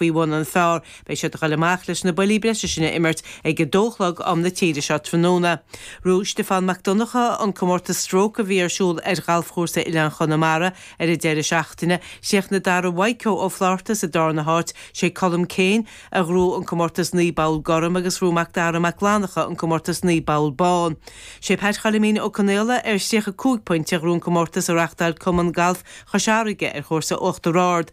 Faoi bhun an phár, beidh siad ag dul amach leis na buillí breise sin a imirt ag a dó a chlog am na tíre seo tráthnóna. Ghnóthaigh Stiofán Mac Donnchadha an comórtas stróc a bhí ar siúl ar ghalfchúrsa Oileáin Chonamara ar an deireadh seachtaine. Chríochnaigh Darragh Mhaidhcó Ó Flátharta sa darna háit. Sé Colm Keane a ghnóthaigh an comórtas naoi bpoll gorm agus ghnóthaigh Macdara Mac Fhlannacha an comórtas naoi bpoll bán. Sé Pat Choilmín Ó Conaola ar thríocha cúig pointe a ghnóthaigh an comórtas a reáchtáil Cumann Galf Chois Fharraige ar chúrsa Uachtar Ard.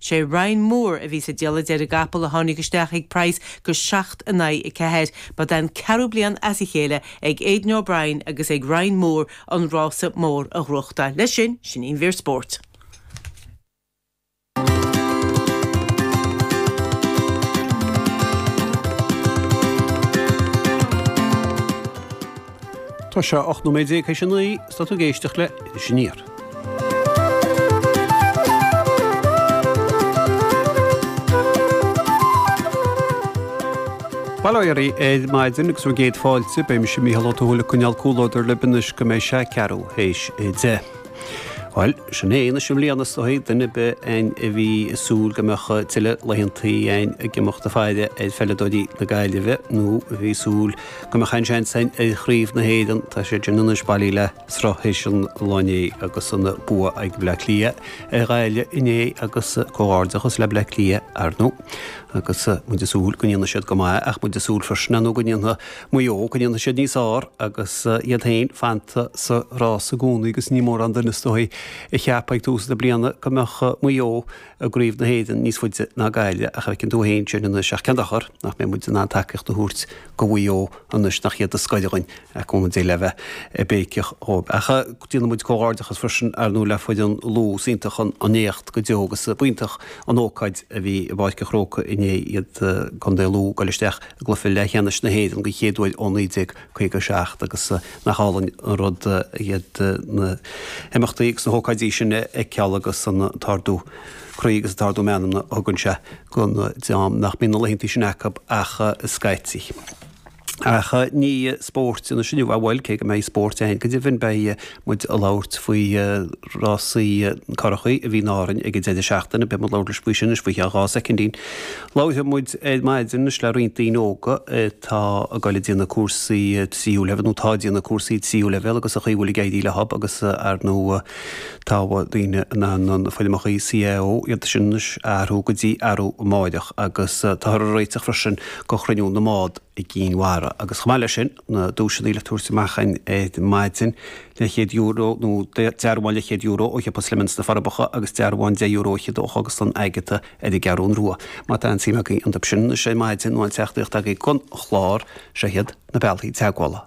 Sé Ryan Moore a bhí sa diallait ar an gcapall a tháinig isteach ag praghas go seacht in aghaidh a ceathair. Ba é an ceathrú bliain as a chéile ag Aidan O'Brien agus ag Ryan Moore an rása mór a ghnóthachtáil. Leis sin, sin í an mhír spóirt. Tá sé ocht nóiméad déag tar éis a naoi, is tá tú ag éisteacht le Iris Aniar. Bail ó Dhia oraibh ar maidin agus céad fáilte, beidh mise Mícheál Ó Tuathail ag coinneáil comhluadar libh anois go mbeidh sé ceathrú théis a deich. Bhuel, sin é, anois i mbliana is dóigh, duine ar bith againn a bhí ag súil go mbeadh tuilleadh laethanta againn ag imeacht ag faire ar pheileadóirí na Gaillimhe nó a bhí ag súil go mbeadh aon seans againn ar Chraobh na hÉireann, tá sé sin anois bailithe le sruth théis an lae inné agus an bua ag Bleá Cliath ar Ghaillimh inné agus comhghairdeachas le Bleá Cliath arnú agus muid ag súil go ndéanfaidh siad go maith ach muid ag súil freisin arnú go ndéanfaidh Maigh Eo go ndéanfaidh siad níos fearr agus iad féin fanta sa rás i gcónaí agus ní mórán duine is dóigh a cheap ag tús na bliana go mbeadh Maigh Eo i gCraobh na hÉireann níos faide ná Gaillimh ach feiceann tú féin sin anois ach cén dochar nach mbeidh muid in ann tacaíocht a thabhairt go Mhaigh Eo anois nach iad is gaire againn ar chuma ar bith le bheith ag béiceach dhóib. Ach déanann muid comhghairdeachas freisin, ar ndóigh, le foireann Lú. Is iontach an éacht go deo agus b'iontach an ócáid a bhí i bPáirc an Chrócaigh inné iad Contae Lú ag goil isteach i gcluiche leathcheannais na hÉireann den chéad uair ó 1957 agus nach álainn an rud iad na himeachtaí agus na hócáidí sin a fheiceáil agus an t-ardú croí agus an t-ardú meanmna a thugann sé don dream nach mbíonn na laethanta sin acu ach scaití. Ach ní spóirt anois inniu, bhuel, cé go mbeidh spórt ann go deimhin. Beidh muid ag labhairt faoi rásaí curachaí a bhí in Árainn ag an deireadh seachtaine. Beidh muid labhairt leis faoi sin anois faoi cheann dhá soicindín. Labharfaidh muid ar maidin anois le roinnt daoine óga atá ag dul ag déanamh cúrsaí tríú leibhéal nó atá ag déanamh cúrsaí tríú leibhéal agus an chaoi a bhfuil ag éirí leothab agus ar ndú Tá, beidh daoine in ann na foirmeacha CAO, iad sin anois a athrú go dtí arú amáireach, agus táthar ag réiteach freisin do Chruinniú na mBád i gCinn Mhara. Agus chomh maith leis sin, na duaiseanna le tabhairt amach againn ar maidin, leathchéad euro, nó dearbhán leathchéad euro ó shiopa Slemon sna Forbacha, agus dearbhán deich euro fhichead ó Chógaslann Agatha ar an gCeathrún Rua. Má tá aon tsuim agaibh iontub sin anois ar maidin, nó aon teachtaireacht agaibh don chlár, seo iad na bealthaí teagmhála.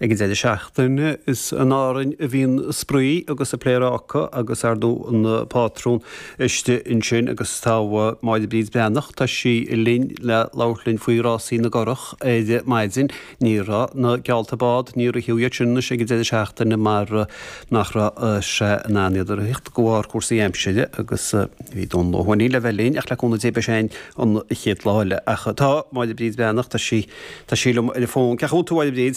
Ag an deireadh seachtaine, is in Árainn a bhí an spraoi agus an pléaráca agus ar ndóigh an pátrún istigh ansin agus tá Máire Bríd Breathnach, tá sí linn le labhairt linn faoi Rásaí na gCurach ar maidin. Ní raibh na geallta bád, ní raibh iad sin anois ag an deireadh seachtaine mar nach raibh sé in ann iad a rith de bharr cúrsaí aimsire agus bhí Dónall Ó hUaithnín le bheith linn ach le cúnamh Dé beidh sé linn an chéad lá eile. Ach tá Máire Bríd Breathnach, tá sí, tá sí liom ar an bhfón. Cén chaoi a bhfuil tú, a Mháire Bríd?